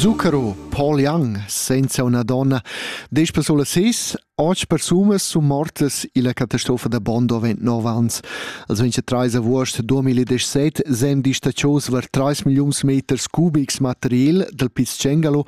Zucchero, Paul Young, senza una donna, dieci persone sis, otg persunas sun mortas illa catastrofa da Bondo avent 9 ans. Als 23 avuost 2017 sem distacios var 3 milliuns meters cubics material dal Piz Cengalo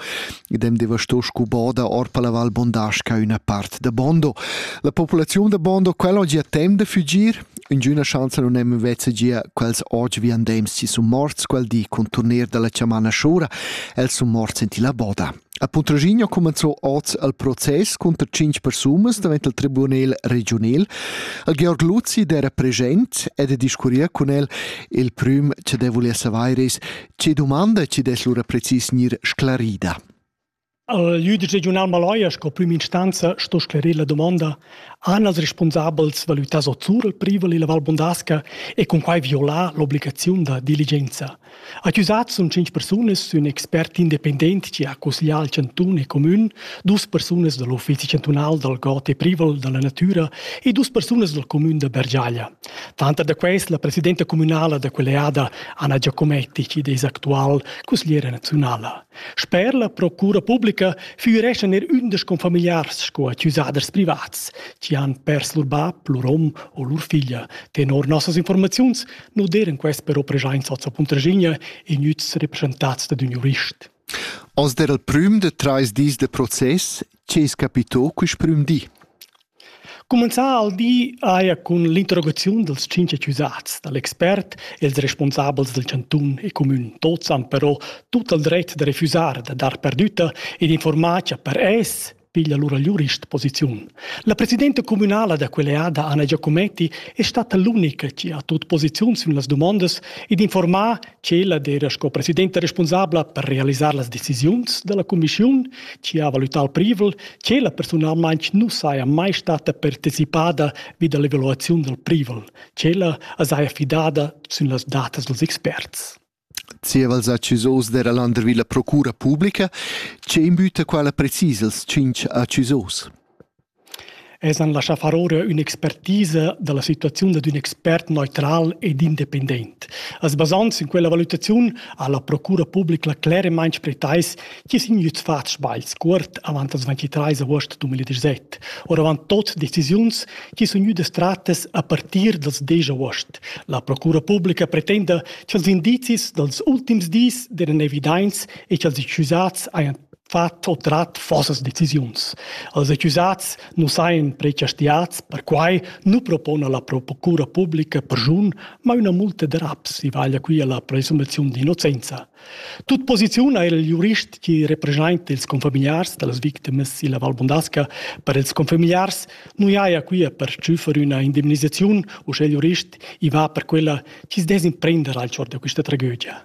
ed hem devastò scubo da orpa la Val Bondasca üna part da Bondo. La populaziun da Bondo quella ho gia temp da fügir, Üngüna schanza nun hemma vezza gia quels oggi viandems chi sun morts quel di cun turnier da la chamana Schura. Els sun morts in tilla boda. A Puntraschigna cumanzò oz il process cunter tschinch persunas davent il tribunel regiunel. Il Georg Luzi d'era present ed discurria cun el. Il prüm cha deu vulia savair es, che dumanda chi dess lura precis gnir sclarida. L'üdic regiunal Maloja sco prüm instanza sto sclerir la dumonda han els respunsabels valütas o sur il privel illa Val Bondasca e cun quai violar l'obligaziun da diligenza. Accusats sun tschinch persunas sün expert independent chi ha cusglià al chantun e cumün, dus persunas da l'uffizi chantunal dal god e privel da la natüra e dus persunas dal cumün da Bergiaglia. Tanter da quest la presidenta cumünala da quell'eada Anna Giacometti chi'd es actual cusgliera naziunala. Sper la procura publica füreschan er ündas confamiliars sco accusaders privats chi han pers lur bap, lur hom o lur figlia. Tenor nossas informaziuns nu d'eiran quest però preschaints hoz a Puntraschigna e gnüts represchentats dad ün jurist. Oz d'eira il prüm da trais dis da process. Che es capito quist prüm di? Cumenzà ha il di eir cun l'interrogaziun dals tschinch accusats da l'expert e ils respunsabels dal chantun e cumün. Tuots han però tut il dret da refüsar da dar perdütta ed infuormar cha per es piglia lura l'jurist posiziun. La presidenta cumünala da quell'eada Anna Giacometti è stata l'unica chi ha tut posiziun sün las dumondas ed infuormà Tschella era sco presidenta responsabla per realisar las decisiuns dalla cumissiun, chi ha valutau il privel, tschella personalmein nu saja mai stata partecipada vi dall'evaluaziun dal privel. Tschella as haja fidada sün las datas dels experts. Zievals accusos dera Landervilla Procura Publica, che imbüta quala precis els tschinch accusos? Els han laschà far ora ün'expertisa da la situaziun dad ün expert neutral ed independent. As basand sün quella valutaziun ha la procura publica cleremaing pretais chi sun gnüts fats sbagls cuort avant las 23 aost 2017, oravant tot decisiuns chi sun gnüdas trattas a partir dals 10 aost. La procura publica pretenda cha'ls indizis dals ultims dis deran evidaints e cha'ls accusats hajan fa tot trat fossas decisiuns. Els accusats nu sajan prechastiats, perquai nu propona la procura publica perschun, ma üna multa da raps i vaglia qui alla presumaziun d'innocenza. Tut posiziun ha il jurist chi representa ils confamiliars da las victimas illa Val Bondasca per ils confamiliars nu jaja qui a pertschüffer üna indemnisaziun, u sche il jurist i va per quella chi's dess imprender al chor da quista tragedia.